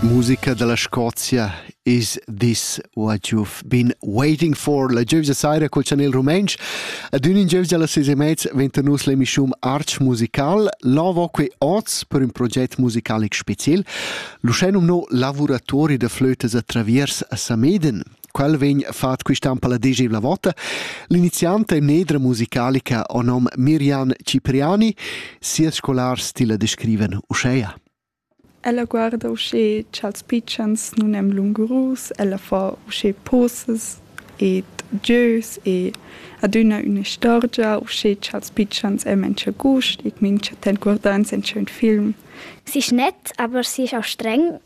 Musica dalla Scozia Is this what you've been waiting for? La gievgia saira col chanel rumentsch. Ad ün in gievgia alla ses e mezz venta nus l'emischum Arch musical, lavo que oz per ün proget musicalic special. L'uschè nomno lavuratori da flötas a traviers a Sameden. Quel vegn fatg quist'an per la desevla vota. L'inizianta e nedra musicalica o nom Mirjan Cipriani, sia scolar stile descriven uscheia. Ella guarda usche cha'ls pitschens nun èn lungurus, ella fa usche poses ed gieus e adüna ün'istorgia usche cha'ls pitschens èn mincha gust e mincha temp guardans in ün film. Sich nett, aber sich auch streng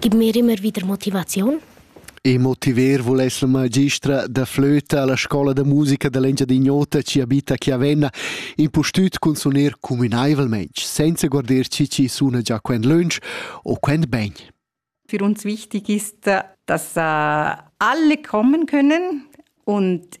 Gib mir immer wieder Motivation. E motiver vuless la magistra da flöta alla scola da musica dell'Engiadignota ci abita Chiavenna impustüt cun suner communaivelmente, senza guarder ci ci suna già quend lunch o quend ben. Für uns wichtig ist, dass alle kommen können und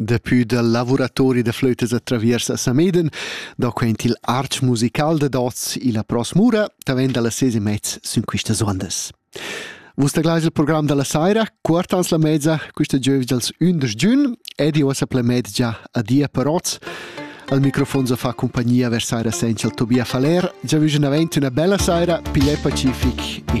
Daplü dal lavuratori da flötas a Traviers a Sameden, da quaint il arch musical dad oz illa Pro Smura, tavent da las ses e mez sün quistas ondas. Vus taglais il program da la saira, quartans la mezza, quista giovis dals 11 giun, ed io sa ple mezgia adia per oz. Al microfon so fa compagnia vers saira senza il Tobia Faler. Già vügen avent üna bella saira, pigliai pacific e